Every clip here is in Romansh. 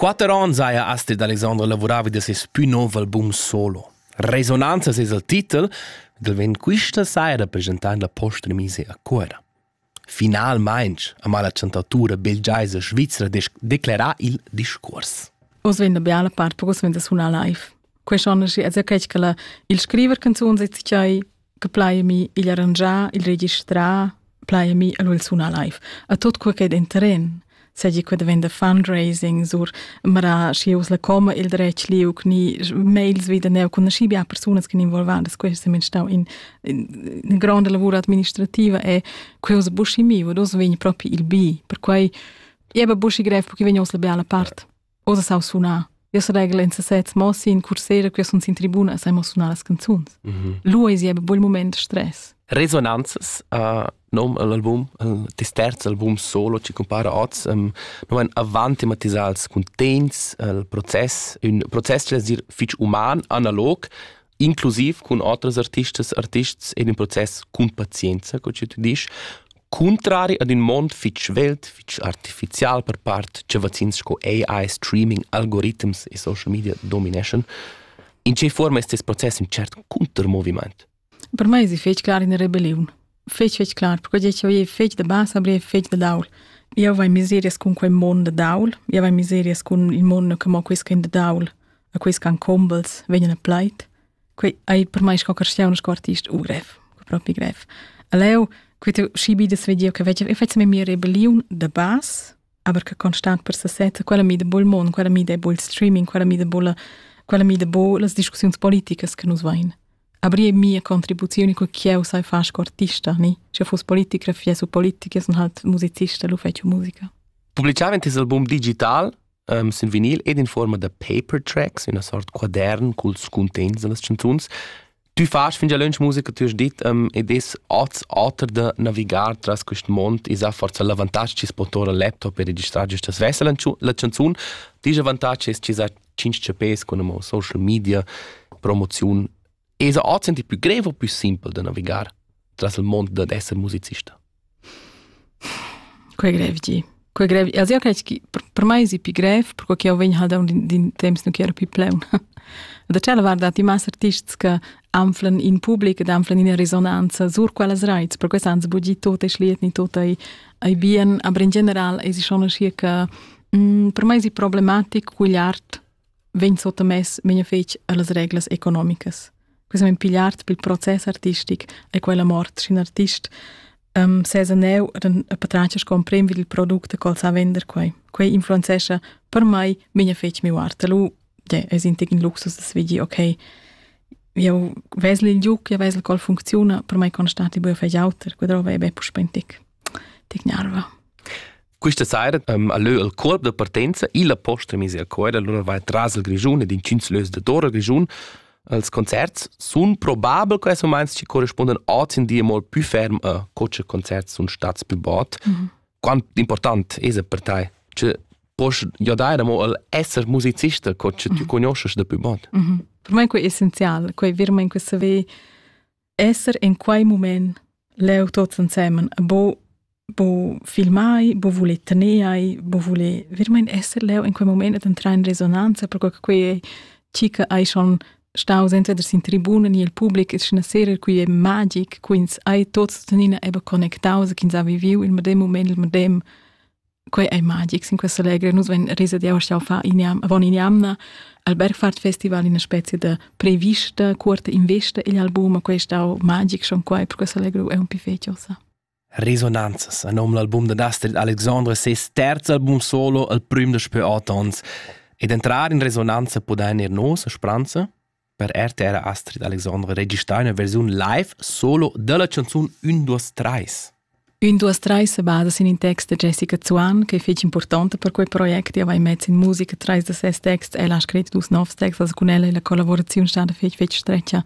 Quatter onns haja Astrid Alexandra lavuravi da ses pü nov album solo. Resonanzas es il titel, del vegn quista saira presentar la posta mise a Cuera. Finalmaing ama la chantatura belgiaisa svizra declerà il discuors. Oz vegn la biala part per oz vegn da sunar live. Quest'anno è es quel che il scriver canzun si che plaiami igl arrangiar, il registrar, plaiami el il sunar live. A tot quel che è in terren, seigi quel venda fundraising sur mara schi us la coma il dretg liuc ni mails wieder neu con schi bia persunas che involvadas questo sem stau in in grande lavoro administrativa e quels buschi mi wo dos vegn proprio il bi per quei e ba buschi grev perché vegn os la bella part Osa sau sunar. Io seregla in sesez, mo sin cursera che sunt in tribuna sai mo sunar las canzuns. Mm -hmm. Lu es jebe bel moment stress. Resonanzas uh, nom all'album, il terz album solo ci compara oz, um, non en avant thematisals cuntegns, il proces, un proces che es dir fich uman, analog, inclusiv cun otras artistas artists en in process cun pazienza, co che tu dici, cuntrari ad in mond fitg svelt, fitg artificial per part, che vaccins sco AI, streaming, algoritms e social media domineschan, in che forma è questo processo in cert contermoviment? Per me è difficile in rebellion. fetg fetg clar, perché eu ei fetg da basa, aber fetg da daul. Eu vai miserias cun quei mond da daul, eu vai miserias cun il mond che mo quis ch'en da daul, a quis ch'han combels, vegnan a plait. Quei ei per mei sco cristian sco artist u grev, propi grev. A leu, quei tu schi bi da svediu che veggia, eu fetz me mia rebelliun da bas, aber che constant per sesetta, quella mi da bol mond, quella mi da bol streaming, quella mi da bolla, quella mi da bo las discussiuns politicas che nus vain. Aber mia contribuzione che ch'eu sai far sco artista, ni? Sche fuss politicografia su politica, sun halt musicista, lu fetsch musica. Publiciava tes album digital um, sin vinil ed in forma da paper tracks, una sort quadern culs cuntegns da las canzuns. Tu fas fin già lunch musica, tu hast dit, um, ed es oz oter da navigar tras quest mond, is ha forza l'avantatg chi es po tora laptop e registrar giustas svessa la canzun. Tich avantatg es chi sa tschinch chapes con amo social media promoziun esa ozzendi più greve o più simpel da navigar tras il mond dad esser musicista. Quei grev di. Quei grev. Also io credo che per me è più grev perché io vengo halt da un din temps nu che ero più pleun. Da c'è la guarda ti mas artists che anflen in pubblic ed anflen in risonanza sur quellas rights, perché sans bugi tot es liet ni tot ai ai bien, aber in general es schon schier che Mm, per mai è problematic art vegn sottamess vegna fetg las reglas economicas. Questa men pigliart bil proces artistic e quella mort scin artist um, sesa neu ren a patracia scomprem vid il product col sa vender quei. Quei influenzescha per mai vegna fetg mi art. Lu je, es in tic in luxus das vigi okay. Eu vesel il giuc, eu vesel col funcziona, per mai constati bu fei auter, quadrova e be puspentic. Tic nerva. Questa saira um, ha leu il corp da partenza illa posta mise a Coira, allora vai tras il Grischun ed in Cinzlös de Tora Grischun. Els concerts sun probabel questi moments che corrispondono oggi in dia molto più ferm a coce concerts sun stats più bot. Mm -hmm. Quanto importante è per te? Cioè, puoi ja dare mo al essere musicista coce tu conosci da più bot? Mm -hmm. Per me è essenziale, quei virma in questa ve esser in quei mument leu tots ensemen bo bo filmai, bo voler tener ai, bo voler vermein esser leu in quei moment ed entrar in resonanza, perque che quei ei chi che ei schon staus entweder sin tribuna ni el public e sch'na sera qui è magic, qui ins ei tots tuttenina eben connectaus, ch'ins ha viviu il medem moment, il medem quei ei magic in questa legra nus ven risa di auch fa in jam von in jamna al Bergfahrt Festival in specie de prevista curta investa igl album questa magic schon quei per questa legra è un più feciosa Resonanzas a nom l'album de Astrid Alexandre ses terz album solo al prim de spe atons ed entrar in resonanza podein ir nos a spranza Per RTR ha Astrid Alexandre registrà ina versiun live solo dalla canzun Un duas treis. Un duas treis se basa sin in text da Jessica Zuan che è fitg importante per quei project e aveva in mezzo in musica trais da ses texts e l'ha scritto dus novs texts cun ella e la collaborazione è stata fitg fitg streccia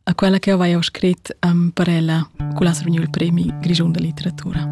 a quella che aveva scritto um, per ella con la Srgnul Premi Grigiun da Litteratura.